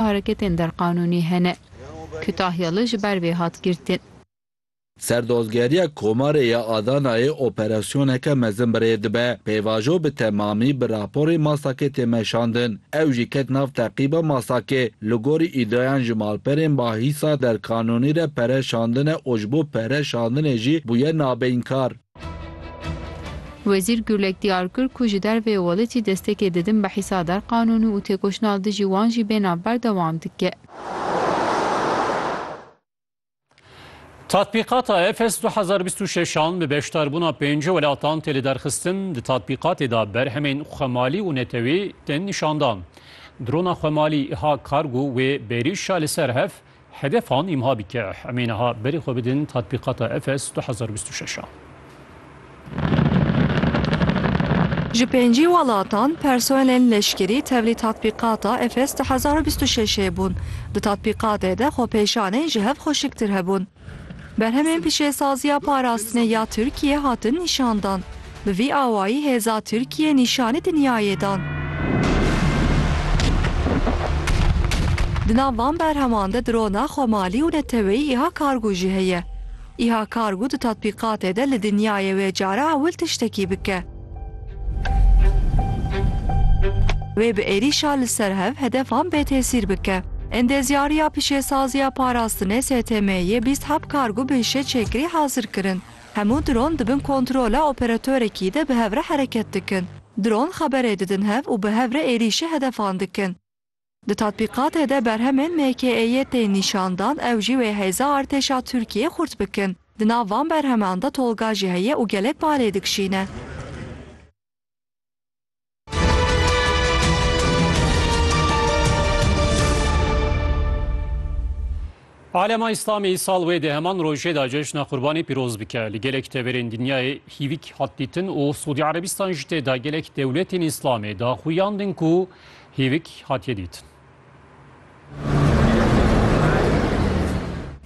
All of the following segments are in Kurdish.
hareketên derqanûnî hene. Kutahya li ji ber vê hat girtin. Serdozgeriya Komarê ya Adanayê operasyoneke mezin bi rê dibe. Pêvajo bi temamî bi raporê Masakê tê meşandin. Ew jî ket nav teqîba Masakê. Li gorî îdiayan ji malperên bahîsa derqanûnî re pere şandine û ji bo pere şandinê jî bûye nabeynkar. Wezîr Gulek diyar kir ku ji derveyê welêtî destekê didin bi hîsa der qanûnî û têkoşîna li dijî wan jî bê nav berdewam dike. Tatbîqata EFES du hezar û bîst û şeş an bi beşdarbûna pêncî welatan tê lidarxistin, di tatbîqatê de berhemên xwemalî û netewî tên nîşandan. Drona xwemalî Iha Kargo wê bêrîşa li ser hev Hedefan îmha bike, em ê niha berê xwe bidin Tatbîqata Efes du hezar û bîst û şeş a. Ji pêncî welatan personelên leşkerî tevlî Tatbîqata Efes du hezar û bîst û şeş ê bûn. Di tatbîqatê de xwepêşanên ji hev xweşiktir hebûn. Berhemên pişesaziya parastinê ya Tirkiyê hatin nîşandan. Bi vî awayî hêza Tirkiyê nîşanî dinyayê dan. Di nav van berheman de drona xwemalî û neteweyî îha kargo jî heye. Îha kargo di tatbîqatê de li dinyayê wê cara ewil tiştekî bike. Wê bi êrîşa li ser hev hedefan bêtesîr bike. Endezyariya Pişesaziya Parastinê STM'yê bîst heb kargo bi hişeçêkirî hazir kirin. Hemû dron di bin kontrola operatorekî de bi hev re hereket dikin. Dron xeberê didin hev û bi hev re êrîşê hedefan dikin. Di tatbîqatê de berhemên MKE'yê tên nîşandan ew jî wê hêza artêşa Tirkiyê xurt bikin. Di nav van berheman de tolga jî heye û gelek barê dikşîne. Alema Îslamî sal wê di heman rojê de Ceşna Qurbanî pîroz bike. Li gelek teverên dinyayê hîvik hat dîtin û Sûdî Erebistan jî tê de gelek dewletên Îslamê daxuyan din ku Hîvik hatiye dîtin.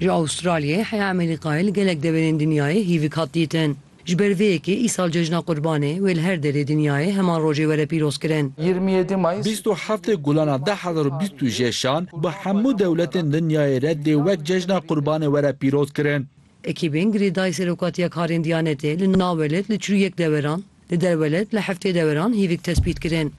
Ji Awstralyayê heya Emelîkayê li gelek deverên dinyayê hîvik hat dîtin. Ji ber vê yekê îsal cejna Qurbanê wê li her derê dinyayê heman rojê were pîrozkirin. Yirmi yedî Mayıs. Bîst û heftê Gulana du hezar û bîst û jêşan bi hemû dewletên dinyayê re dê wek cejna Qurbanê were pîrozkirin. Ekîbên girêdayî Serokatiya Karên Diyanetê li navwelet li çil û yek deveran, li derwelet li heftê deveran hîvik tespît kirin.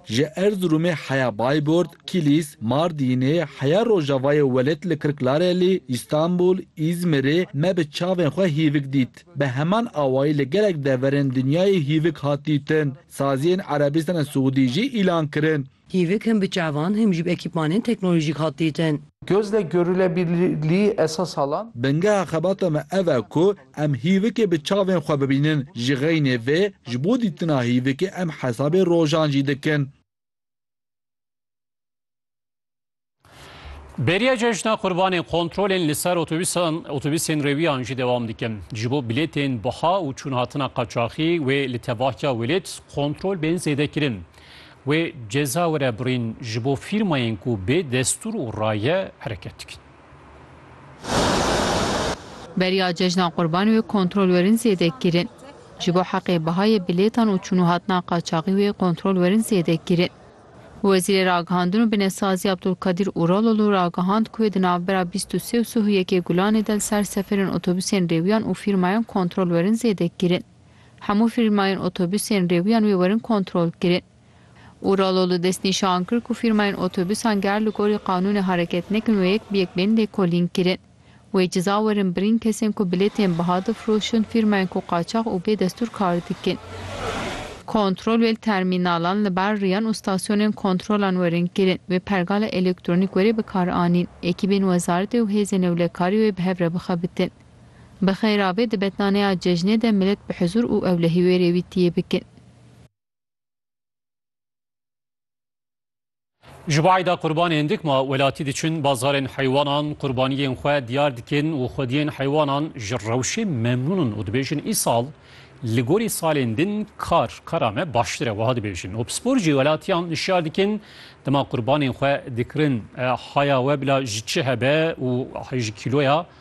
Ji Erziromê heya Bayburt, Kilîs, Mardînê, heya Rojavayê Welêt li Kirklarelî, Îstanbul, Îzmirê me bi çavên xwe hîvik dît. Bi heman awayî li gelek deverên dinyayê hîvik hat dîtin. Saziyên Erebîstana Siûdî jî îlan kirin. Hîvik him bi çavan him jî bi ekîpmanên teknolojîk hat dîtin. Bingeha xebata me ev e ku Em hîvikê bi çavên xwe bibînin, ji xeynê vê ji bo dîtina hîvikê em hesabê rojan jî dikin. Bêriya cejna qurbanên kontrolên li ser otobîsan otobîsên rêwiyan jî dewam dikin. Ji bo bilêtên biha û çûnhatina qaçaxî wê li tevahiya welêt kontrol bên zêdekirin. Wê ceza were birîn ji bo fîrmayên ku bê destûr û raye hereket dikin. Beriya cejna qurban wê kontrol werin zêde kirin. Ji bo heqê bihayê bilêtan û çûnûhatina qaçaxî wê kontrol werin zêde kirin. Wezîrê Ragihandin û Binesaziya Abdulkadir Uralolu ragihand ku wê di navbera bîst û sê û sih û yekê Gulanê de li ser seferên otobusên rêwiyan û fîrmayan kontrol werin zêde kirin. Hemû fîrmayên otobusên rêwiyan wê werin kontrol kirin. Uralo li destnîşan kir ku fîrmayên otobûsan ger li gorî qanûnê hereket nekin û yek bi yek bên lêkolîn kirin. Wê ceza werin birîn kesên ku bilêtên biha difroşin, fîrmayên ku qaçax û bê destûr kar dikin. Kontrol wê li termînalan, li ber riyan û stasyonên kontrolan werin kirin. Wê pergala elektronîk werê bi kar anîn. Ekîbên wezaretê û hêzên ewlekarî wê bi hev re bixebitin. Bi xêra bê di betnaneya cejnê de milet bi huzûr û ewlehî wê rêwîtiyê bikin. Ji bo eyda qurbanê hindik ma welatî diçin bazarên heywanan qurbaniyên xwe diyar dikin û xwediyên heywanan ji rewşê memnûn in û dibêjin îsal li gorî salên din kar kara me baştir e wiha dibêjin. Opspor jî welatiyan hişyar dikin dema qurbanên xwe dikirin haya we bila ji çi hebe û ji kîloya